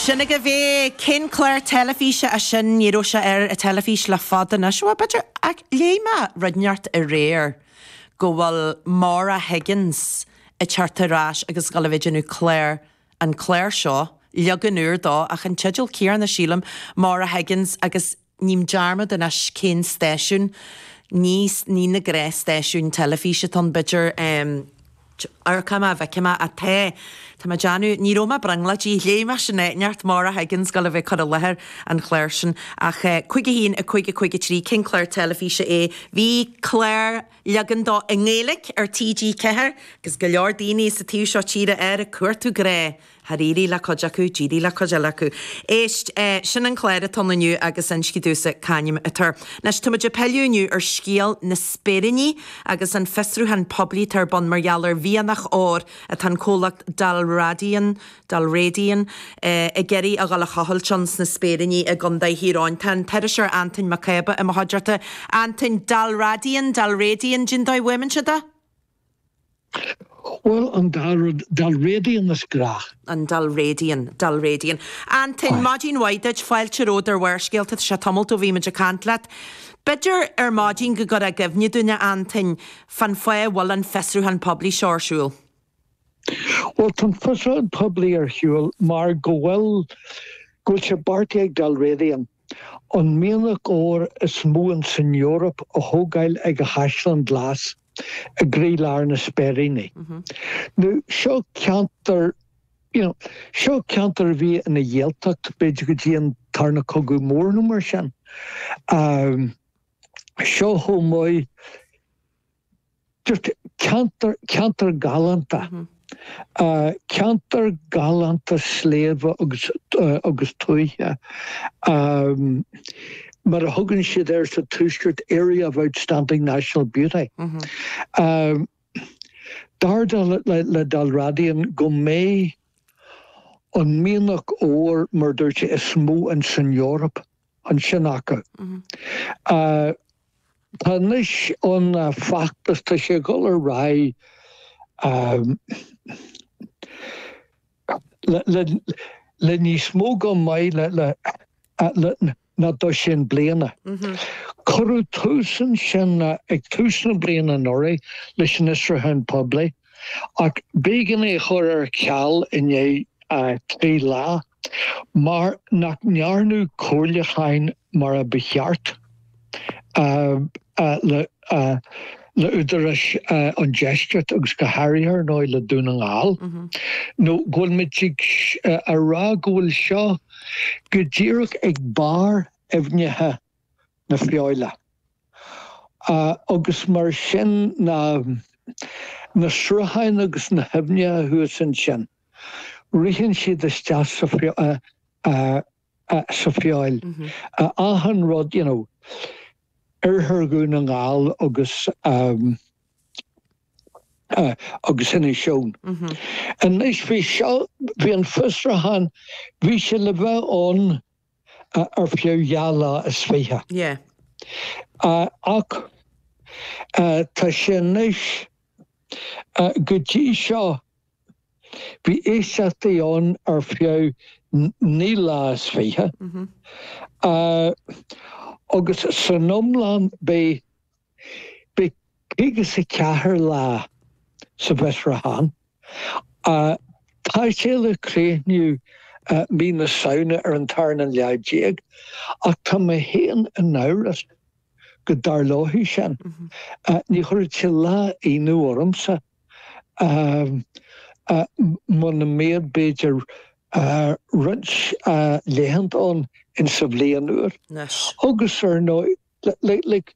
Sin agaibh é. Cén clár teilifíse é sin? Ní raibh sé ar an teilifís le fada anois. Ó, b'fhéidir, ach léigh mé rud inteacht aréir go bhfuil Maura Higgins ag teacht ar ais ag gabháil a bheith ag déanamh clár, an clár seo, leagan úr de ach an teideal céanna, sílim, Maura Higgins agus. Ním dearmad anois cén stáisiún ní ní ní na cé na stáisiúin teilifís atá ann b'fhéidir em ar chuma ar bith chonaic mé é tá tá mé ag déanamh ní raibh mé ag brionglóidí léigh mé sin áit inteacht Maura Higgins ag gabháil a bheith ag cur i láthair an chláir sin ach eh 51 a cúig a cúig a trí cén clár teilifíse é bhí clár leagan de i nGaeilge ar TG4 agus go leor daoine sa taobh seo tíre air ag cuartú grá Ar éirigh le cuid acu? Níor éirigh le cuid eile acu. Éist, sin an clár atá i gceist inniu agus inis dúinne c'ainm atá air. Anois, táimid ag pilleadh inniu ar scéal na Spéiríní agus an fiosrúchán poiblí atá ar bun mar gheall ar mhianach óir atá an comhlacht Dalradian, Dalradian, ag iarraidh a dhul a thochailt ann sna Spéiríní i gContae Thír Eoghain. Tá an t-iriseoir Anton Mac Cába i mo chuideachta. Anton, Dalradian, Dalradian, cén dóigh a bhfuaimníonn siad é? Bhuel, an dá rud Dalradian as grách. an Dalradian, Dalradian. Anton, Maidin mhaith duit, fáilte romhat ar Bharrscéalta, tá sé tamall ó bhí muid ag caint leat. B'fhéidir ar maidin go gcuirfeá i gcuimhne dúinn, a Anton, cén fáth a bhfuil an fiosrúchán poiblí seo ar siúl. Bhuel, tá an fiosrúchán poiblí ar shiúl mar go bhfuil, go bhfuil sé beartaithe ag Dalradian an mianach óir is mó in san Eoraip a thógáil ag an Chaisleán Ghlas. i gcroílár na Spéiríní. Nó seo ceantar, you know, seo ceantar a bhí ina Ghaeltacht, b'fhéidir go dtí an tarna cogadh mór nó mar sin. Um, seo chomh maith, just ceantar, ceantar galánta. Mm -hmm. Ceantar galánta sléibhe agus tuaithe, mar a thugann siad air sa Tuaisceart, 'area of outstanding national beauty'. Dar le Dalradian go mbeidh an mianach óir, mar a dúirt tú, is mó in san Eoraip. ansin acu. Tá anois an feachtas, tá sé ag dul ar aghaidh le níos mó go maith ná dosaen bliana. Cuireadh tús ansin ag tús na bliana anuraidh leis an fhiosrúchán poiblí ach b'éigean é a chur ar ceal i ndiaidh trí lá. Mar nach ndearnadh comhairliúcháin mar a ba cheart le údaráis an deiscirt agus go háirithe, ar ndóigh, le Dún na nGall, nó go bhfuil muid ag a rá go bhfuil seo go díreach ag barr aibhneacha na Feabhaile, agus mar sin na srutháin agus na haibhneacha thuas ansin. Ritheann siad isteach sa Feabhal, achan rud, you know, oirthear Dhún na nGall agus, agus Inis Eoghain. Anois bhí seo, bhí an fiosrúchán, bhí sé le bheith ann ar feadh dhá lá is fiche. Yeah. Ach tá sé anois, go dtí seo, Bhí éisteachtaí ann ar feadh naoi lá is fiche, agus san iomlán beidh caoga is a ceathair lá sa bhfiosrúchán. Tá sé le críochnú mí na Samhna ar an tarna lá déag, ach tá mé féin in amhras go dtarlóidh sin. Ní chuirfeadh sé lá ionadh ormsa. muna mbeadh b'fhéidir roinnt laethanta ann in sa bhliain úr. Anois. Agus ar ndóigh, like,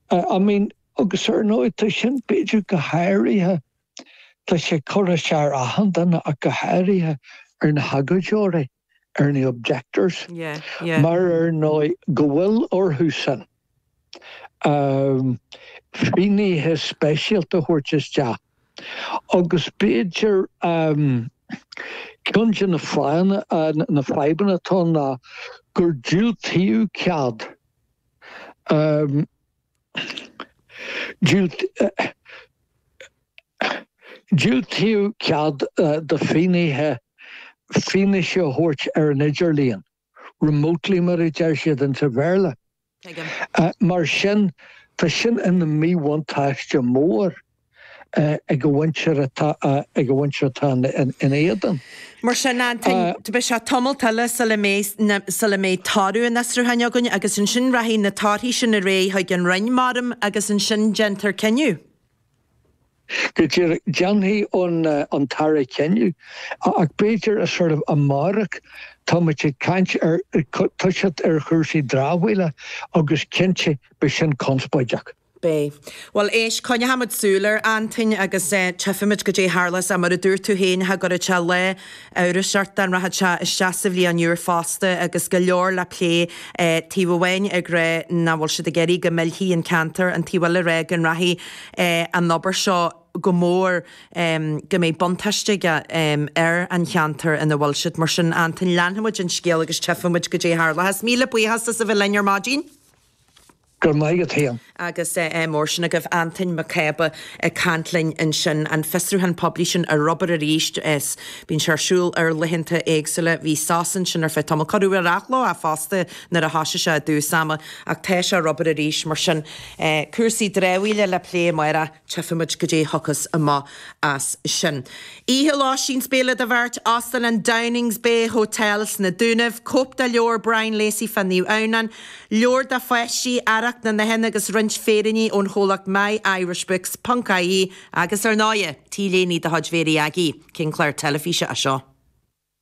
I mean, agus ar ndóigh, tá sin b'fhéidir go háirithe, tá sé ag cur as d'achan duine ach go háirithe ar na hagóideoirí. ar na objectors, mar ar ndóigh go bhfuil orthusan, fínnithe speisialta a thabhairt isteach, agus b'fhéidir ceann de na fadhbanna atá ann ná gur diúltaíodh cead. Diúltaíodh cead do fhinnéithe fianaise a thabhairt ar an idirlíon, remotely mar a deir siad ins an Bhéarla. Mar sin, tá sin ina míbhuntáiste mór. ag an mhuintir atá ina éadan. Mar sin, beidh sé tamall eile sula mbeidh toradh an fhiosrúcháin againn agus ansin rachaidh na torthaí sin ar aghaidh chuig an Roinn, mar a déarfá, agus ansin déanfar cinneadh. Go deimhin, déanfaidh an tAire cinneadh, ach b'fhéidir a sort of amárach. Tá muid ag caint, ag toiseacht ar chúrsaí dramhaíola agus cinnte beidh sin conspóideach. B. Bhuel, éist, coinneoimid súil air, Antoin, agus tífimid cad é a tharlós, mar a dúirt tú féin, cha gcuirfeadh sé lá amhrais ort dá rachadh sé isteach sa bhliain úr fosta agus go leor le plé taobh amháin ag rá nach bhfuil siad ag iarraidh go millfí an ceantar an taobh eile ag rá go rachaidh an obair seo go mór go mbeidh buntáiste aige ar an cheantar ina bhfuil siad. Mar sin, Antoin, leanfaimid an scéal agus tífimid cad é a tharlóchas. Míle buíochas as a bheith linn ar maidin. Go maith agat fhéin. Agus mór sin agaibh. Antain Mac Cába ag caint linn ansin. An fiosrúchán poiblí sin ar obair arís. Bíonn sé ar siúl ar laethanta éagsúla. Bhí sos ansin ar feadh tamall. Cuireadh ar athlá é fosta nuair a thosaigh sé i dtús ama. Ach tá sé ar obair arís. Mar sin, cúrsaí dramhaíola le plé amárach. Tífimid cad é a thiocfas amach as sin. Oíche lóistín is béile do bheirt, Óstán an Downings Bay Hotel sna Dúnaibh, cóip de leabhar Brian Lacey fá Naomh Adhamhnán, leabhair do pháistí, Earrach na nItheann agus roinnt féiríní ón chomhlacht My Irish Books, ponc-IE, agus ar ndóighe, T-léine de chuid Mhéirí Aggie, cén clár teilifíse é seo?